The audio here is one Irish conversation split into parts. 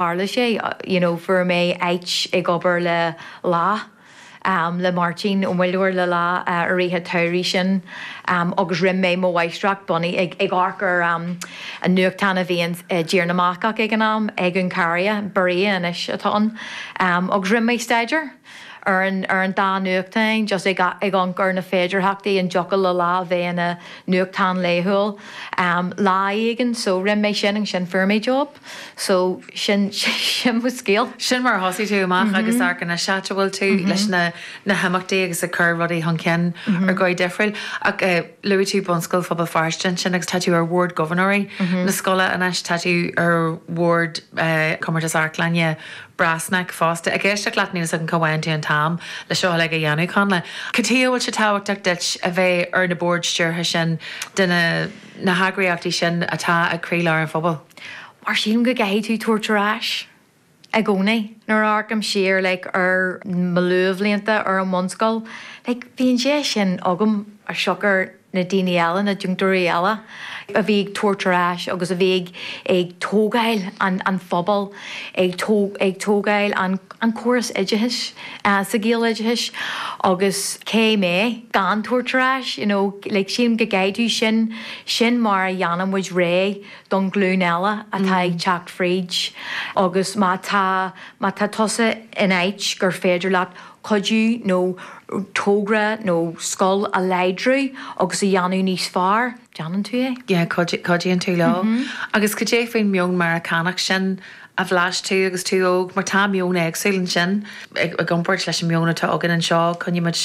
Tharla sé, you know, fuair mé áit ag obair le Lá, le Máirtín Ó Muilleoir le Lá i rith an tsamhraidh sin agus rinne mé mo mháistreacht bunaithe ag ag amharc ar an nuachtán a bhí ins i dTír na mBascach ag an am, Egunkaria, Berria anois atá ann, agus rinne mé staidéar ar an ar an dá nuachtáin just ag ag amharc ar na féidearthachtaí an dtiocfadh le Lá a bheith ina nuachtán laethúil lá éigin so rinne mé sin agus ansin fuair mé job. So, sin, sin mo scéal. Sin mar a thosaigh tú amach agus amharc anois áit a bhfuil tú leis na, na himeachtaí agus ag cur rudaí chun cinn ar dhóigh difriúil. Ach eh, luaigh tú Bunscoil Phobal Feirste ansin agus tá tú ar Bhord Gobharnóirí na scoile anois, tá tú ar Bhord eh, Compántas Amharclainne Brassneck fosta. Ag éisteacht leat níl 'fhios agam cá bhfaigheann tú an t-am le seo uilig a dhéanamh, Connla. Cad chuige a bhfuil sé tábhachtach duit a bheith ar na boird stiúrtha sin de na. na heagraíochtaí sin atá ag croílár an phobail. Mar sílim go gcaithfidh tú tabhairt ar ais i gcónaí. Nuair a amharcaim siar like ar mo luathbhlianta ar an mbunscoil, like bhí an deis sin agam as siocair na daoine eile, na deontóirí eile, a bhí ag tabhairt ar ais agus a bhí ag tógáil an phobail, ag tógáil an. an córas oideachais, sa Ghaeloideachas, agus cé mé gan tabhairt ar ais, you know, like, sílim go gcaithfidh tú, sin mar a dhéanann muid réidh don ghlúin eile atá ag teacht fríd agus má tá, má tá tusa in áit gur féidir leat cuidiú nó togra nó scoil a láidriú agus a dhéanamh níos fearr, déanann tú é. Yeah, cuidíonn tú leo. Agus cad é faoin meon Meiriceánach sin a bhlais tú agus tú óg, mar tá meon éagsúil ansin i gcomparáid leis an meon atá againn anseo, coinnímid,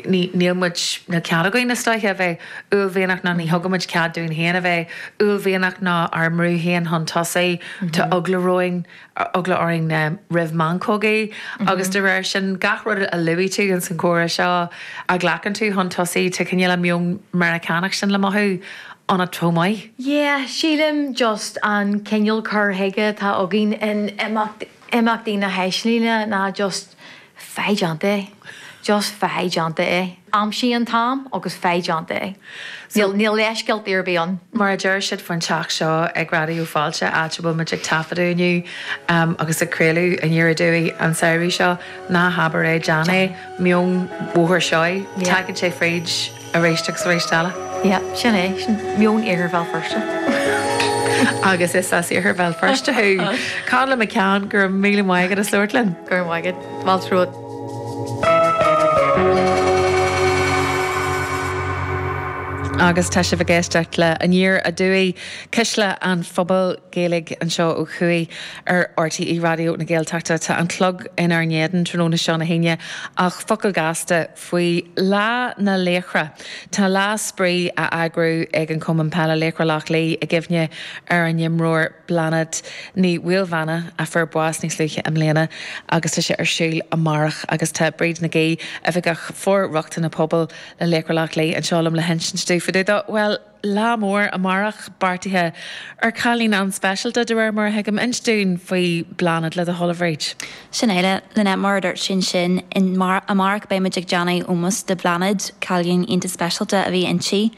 níl muid, níl cead againn is dóiche a bheith uaillmhianach ná ní thugaimid cead dúinn féin a bheith uaillmhianach ná ár mbrú féin chun tosaigh, tá eagla romhainn, eagla orainn roimh mheancógaí agus de réir sin gach rud a luaigh tú ins an gcomhrá seo a ghlacann tú chun tosaigh, tá cineál an meon Meiriceánach sin le mothú. Anna Twomey, Yeah, sílim just an cineál cur chuige atá againn in Imeachtaí na hAislinge ná just faigh déanta é, just faigh déanta é. Aimsigh an t-am agus faigh déanta é. Níl leithscéaltaí ar bith ann. Mar a deir siad faoin teach seo ag Raidió Fáilte, áit a bhfuil muid ag taifeadadh inniu agus ag craoladh ar ndóigh an samhradh seo, ná habair é, déan é. Meon Bhóthar Seoighe, tagann sé fríd. Ar éist agus ar éist eile. Yeah, sin é, sin meon iarthar Bhéal Feirste. Agus is as iarthar Bhéal Feirste thú. Cad liom a ceann, go raibh míle maith agat, as labhairt linn. Go raibh maith agat. Fáilte romhat. Agus tá sibh ag éisteacht le Aniar Aduaidh, Cuisle an Phobail Gaeilge anseo ó thuaidh ar RTÉ Raidió na Gaeltachta. Tá an clog inár n-éadan tráthnóna seo na hAoine ach focal gasta, faoi Lá na Laochra. Tá lá spraoi á eagrú ag an Cumann Peile Laochra Loch Lao i gcuimhne ar an imreoir Bláthnaid Ní Mhaoilmheana a fuair bás níos luaithe i mbliana agus tá sé ar siúl amárach agus tá Bríd Nic Aoidh, Oifigeach For-rochtana Pobail le Laochra Loch Lao anseo liom le hinsint dúinn fá dtaobh dó. Bhuel. Lá mór amárach beartaithe ar chailín an-speisialta, de réir mar a thuigim, inis dúinn faoi Bláthnaid le do thoil, a Bhríd. Sin é, Lynette, mar a dúirt tú ansin, amárach beidh muid ag déanamh ómós do Bhláthnaid, cailín iontach speisialta a bhí inti,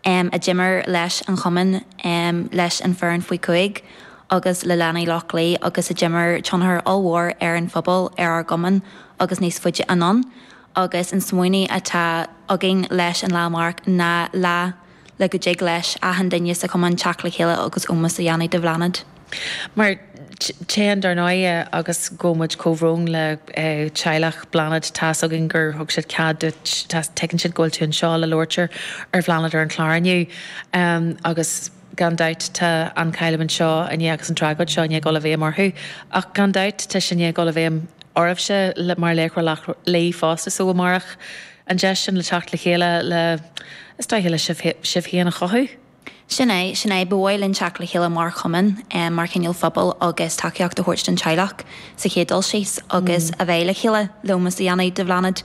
em, a d'imir leis an chumann, em, leis an foireann faoi chúig agus le leanaí Loch Lao agus a d'imir tionchar ollmhór ar an phobal, ar ár gcumann agus níos faide anonn. agus an smaoineamh atá againn leis an lá amárach ná lá le go dtig leis achan duine sa Chumann teacht le chéile agus ómos a dhéanamh do Bhláthnaid. Mar chan dar ndóigh agus guímid comhbhrón le teaghlach Bhláthnaid, tá's againn gur thug siad cead duit, tuigeann siad go bhfuil tú anseo le labhairt ar Bhláthnaid ar an chlár inniu agus. Gan dabht tá an chailliúint seo i ndiaidh agus an tragóid seo i ndiaidh dul i bhfeidhm orthu, ach gan dabht tá sé i ndiaidh dul i bhfeidhm oraibhse mar Laochra Loch Lao fosta so amárach an deis sin le teacht le chéile le, is dóiche, le sibh féin a chothú. Sin é, sin é. Ba mhaith linn teacht le chéile mar chumann, mar chineál phobail agus tacaíocht a thabhairt don teaghlach sa chéad dul síos agus a bheith le chéile, le hómós a dhéanamh do Bhláthnaid.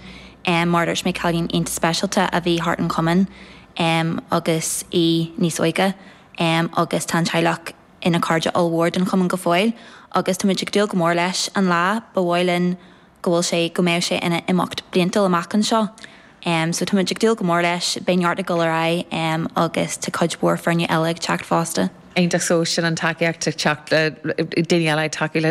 Mar a dúirt mé cailín iontach speisialta a bhí thart an chumann. em. agus í níos óige, em. agus tá an teaghlach ina cairde ollmhór den Chumann go fóill agus táimid ag dúil go mór leis an lá, ba mhaith linn go bhfuil sé, go mbeidh sé ina imeacht bliantúil amach anseo. Em. so táimid ag dúil go mór leis, beidh neart ag dul ar aghaidh, em. agus tá cuid mhór foirne eile ag teacht fosta. Iontach, so sin an tacaíocht ag teacht, daoine eile ag tacú le.